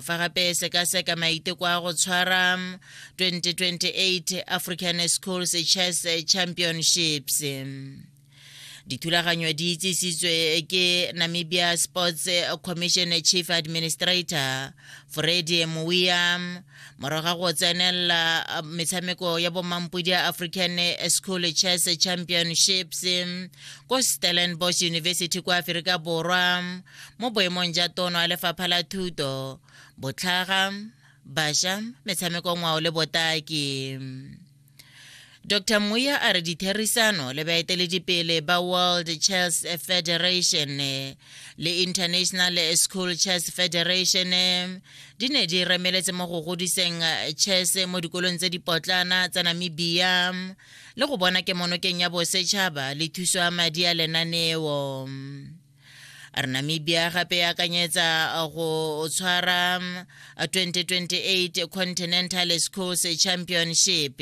fa gape sekaseka maiteko a go tshwara 2028 african schools chess championships dithulaganyo di itsisitswe ke namibia sports commission chief administrator fredi mowiam morago ga go tsenelela metshameko ya bomampodi ya african school chess championships ko stellenbosch university kwa aferika borwa mo boemong ja tono ya lefapha la thuto botlhaga basha metshameko ngwao le botaki dr muya a re ditherisano le baeteledipele ba world chess federation le international school chess federation di ne di remeletse mo go godiseng chess mo dikolong tse dipotlana tsa namibia le go bona kemonokeng ya bosetšhaba le thuso ya madi a lenaneo re namibia gape e akanyetsa uh, go tshwara 2028 um, continental schools championship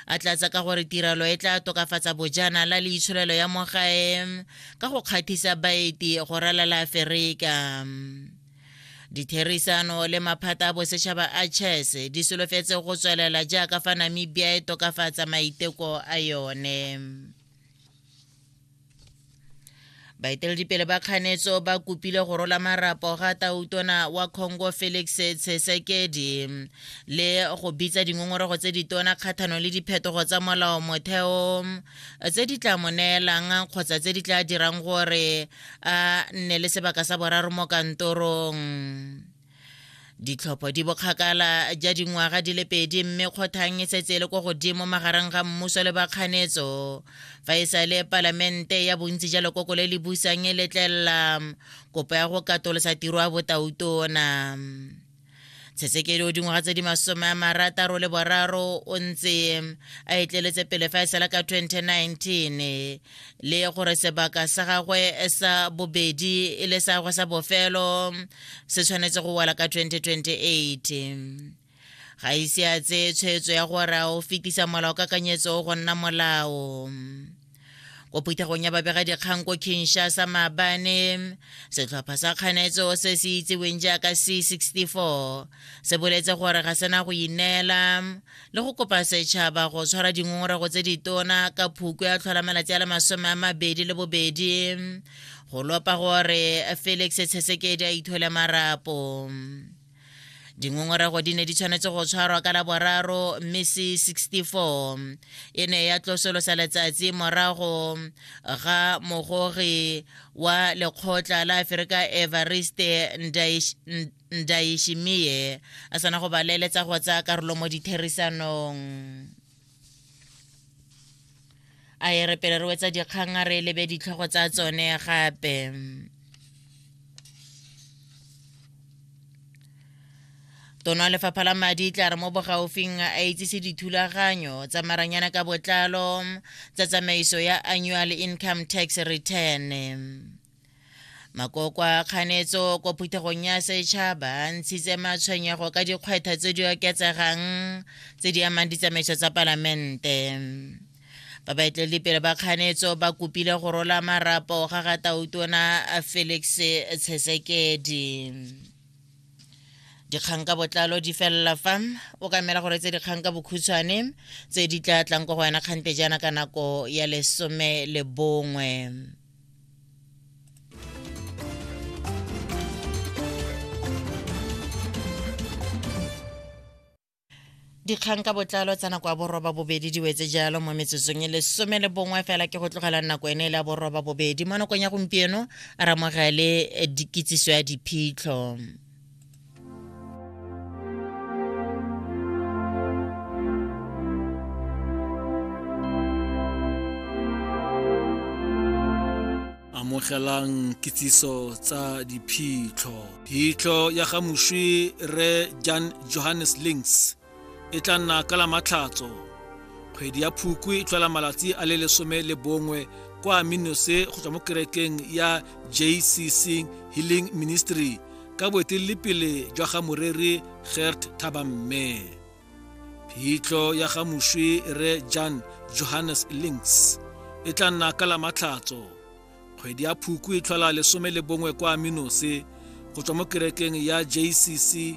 a tlatsa ka gore tirelo e tla tokafatsa bojana la leitsholelo ya mogae um, ka go kgathisa baeti go ralala aferika um, ditherisano le maphata a bosetšhaba a chess di solofetse go tswelela jaaka fa namibia e tokafatsa maiteko a yone baeteledipele ba kganetso ba kopile go rola marapo ga tautona wa congo felix tshesekedi le go bitsa dingongorego tse ditona kgathano le diphetogo tsa molao motheo tse di tla mo neelang kgotsa tse di tla dirang gore a nne le sebaka sa boraro mo kantorong ditlhopho di bokgakala ja dingwaga di le pedi mme kgothang e setse e le ko godimo magareng ga mmuso le bakganetso fa e sa le palamente ya bontsi ja lekoko le le busang e letlelela kopo ya go katolosa tiro ya botautona tshetsekedi o dingwaga tse di masome a marataro le boraro o ntse a etleletse pele fa e sala ka 2019 le gore sebaka sa gagwe sa bobedi e le sa gagwe sa bofelo se tshwanetse go wela ka 2028 ga ise a tseye tshwetso ya gore a o fetisa molao ka kanyetso go nna molao ko phuthegong ya babegadikgang ko kinshasa maabane setlhopha sa kganetso se se itseweng jaaka c64 se boletse gore ga sena go ineela le go kopa setšhaba go tshwara dingongorago tse ditona ka phukwe ya tlhola malatsi a le masome a mabedi le bobedi go lopa gore felix tshesekedi a ithole marapo dingongorego di ne di tshwanetse go tshwarwa ka laboraro mme c64 e ne ya tlosolosa letsatsi morago ga mogogi wa lekgotla la aferika evariste ndaishimiye a sana go ba leeletsa go tsaya karolo mo ditherisanong a e re pele re wetsa dikgang a re lebe ditlhogo tsa tsone gape tono lefapha la madi tla re mo bogaufing a itsise dithulaganyo tsa maranyana ka botlalo tsa tsamaiso ya annual income tax return makoko a kganetso ko phuthegong ya setšhaba a ntshitse matshwenyego ka dikgwetlho tse di oketsegang tse di amang ditsamaiso tsa palamente ba baeteledipele ba kganetso ba kopile go rola marapo ga ga tautona felix tshesekedi dikgang ka botlalo di felela fa o ka mela gore tse dikgang ka bokhutshwane tse di tla tlang ko go wena kgante jaana ka nako ya lesome le bongwe dikgang ka botlalo tsa nako ya boroba bobedi di wetse jalo mo metsotsong e lesome le bongwe fela ke go tlogela nako ene e le ya boroba bobedi mo nakong ya gompieno ramogele eh, dikitsiso ya diphitlho amogelang kitsiso tsa diphitlho phitlho ya ga moswi re jan johannes links e tla nna ka la matlhatso kgwedi ya phukwi e tlhola malatsi a le lesome le bongwe kwa minose go tswa mo kerekeng ya jcc healing ministry ka boeteledipele jwa ga moreri gert thabamme phitlho ya ga moswi re jan johannes links e tla nna ka la matlhatso kgwedi ya phukwi e tlhola lesome le bongwe kwa minose go tswa mo kerekeng ya jcc